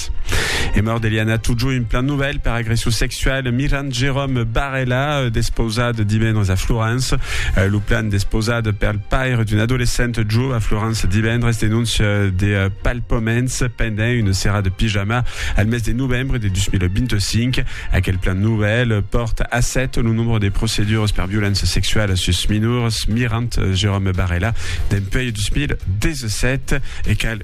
Cat. E mòrt d'Eliana Tudjo, un plan novèl per agression sexual, Miran Jérôme Barella, euh, despausat divendres a Florence. Euh, lo plan despausat per le paire d'un adolescent jo a Florence divendres denonce euh, de palpaments pendent une serra de pyjama al mes de novembre de 2025. Aquel plan nouvel porte a 7 le nombre de procédures per violence sexuelle sus minors, mirant Jérôme Barella, d'un peu 2017 et qu'elle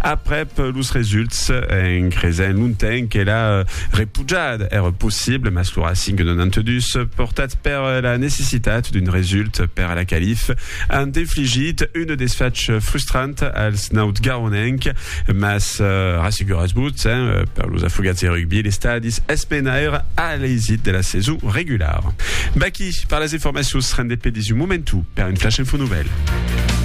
Aprèp los results, en creisent longtemps que la repujada èra possible, mas lo Racing 92, portat per la necessitat d'un result per a la qualif, an infligit un desfach frustrant als nautgaronenc, mas rasseguratz-vos, per los afogats de rugbi, l'estadi es menaire a l'eisit de la saison regulara. Baquí per las informacions, rendez-pe dins un momentu per un flash info nouvèl.